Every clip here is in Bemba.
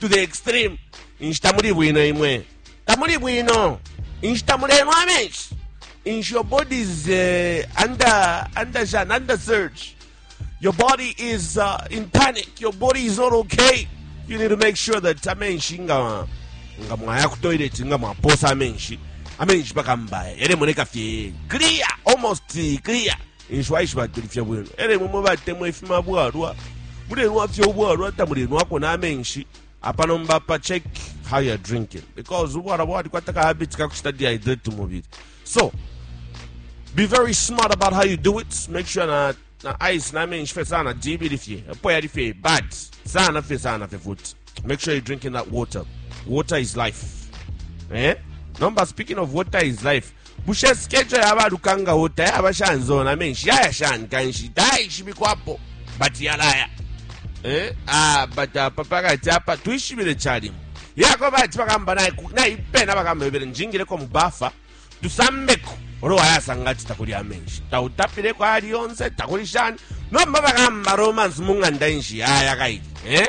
to the extreme inshita muli bwino imwe tamuli bwino inshita mulenwa amenshi inshi your body is uh, under under jan under surge your body is uh, in panic your body is not okay you need to make sure that amenshi nga nga mwaya ku toilet nga mwaposa amenshi amenshi pakambaye yalemoneka fye clear almost clear Eico aishibatulifye bwino. Elo imwe mwe batemwa ifima bwalwa, mulenwafye ubwalwa tamulenwako na menshi apa nomba apa check how you're drinking because ubwalwa bwalikwata ka habit kakuchita dehydrate umubili. So, be very smart about how you do it. Make sure na na ice na menshi fe sana jibili fye. Epo yali fye bad. Sana fye sana fye futhi. Make sure you're drinking that water. Water is life. Eh? Number speaking of water is life. Bushe schedule ya ba Lukanga Water yaba shani zona menshi yaya shani kanshi taishibikwapo but yalaya eh ah but apa pakati apa twishibile chalimu yako bati bakamba naye ku- nayipena bakamba bebere njingireko mu bafa tusambeko olo wayasanga ati takuli amenshi tautapireko ali yonse takuli shani nomba bakamba romance mu ng'anda inshi yaya kaiti eh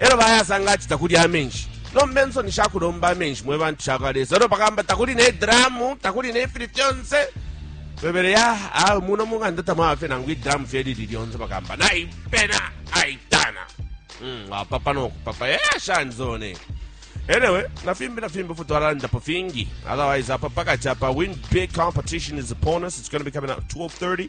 Elo bayasanga ati takuli amenshi. Nomba insoni shakulomba amenshi mwe bantu shakwa Lesa. Elo bakamba takuli ne dramu, takuli ne fili fyonse. Bebele ya, ah, muno munganda tamwafe nangu idramu fye lili lyonse bakamba. Na ipena, aitana. Mm, wapapa no kupapa. Eh, shanzone. Anyway, na fimbi na fimbi futwalanda po fingi. Otherwise, apa paka chapa win big competition is upon us. It's going to be coming out 12:30.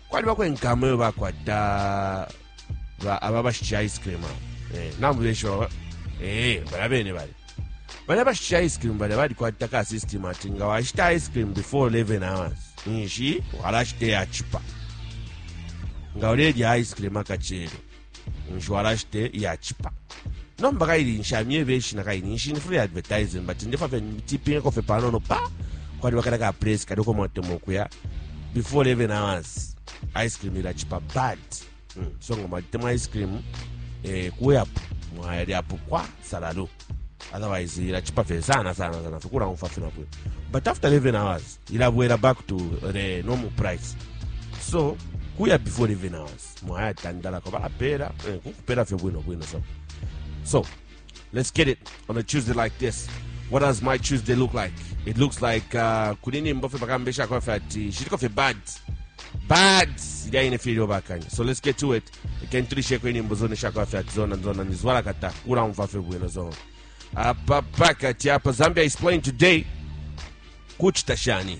kwalibako inkama iyo bakwata ba- aba bashitisha ice cream abo. Eh, nambu benshi baba eh, bala bene bale bala bashitisha ice cream bale balikwata ka system ati nga washita ice cream before 11 hours nshi walashita eyachipa nga ulelya ice cream akachelo Insurance te iyachipa. Nomba kaili nshamye beshi na kaini nshini free advertising but ndefa fe tipping ko fe panono pa kwali wakala ka place kali ko motemo kuya before 11 hours ice cream ila chipa bad mm. so ngoma tema ice cream eh kuya mwali apo kwa salalo otherwise ila chipa fe sana sana sana fikura umfa fina kuya but after 11 hours ila bwela back to the normal price so kuya before 11 hours mwaya tandala ko balapela eh, kupela fyo bwino bwino so so let's get it on a tuesday like this what does my tuesday look like it looks like uh, kuli nimbo fye bakambesha kwa fye ati shitiko fye bad bad ilya ine fye ilyo bakanya so let's get to it ikentulisheko inimbo zone shakwa fye ati zona zona nizwala kata ulamva fye bwino zona apa pakati apa zambia is playing today kuchita shani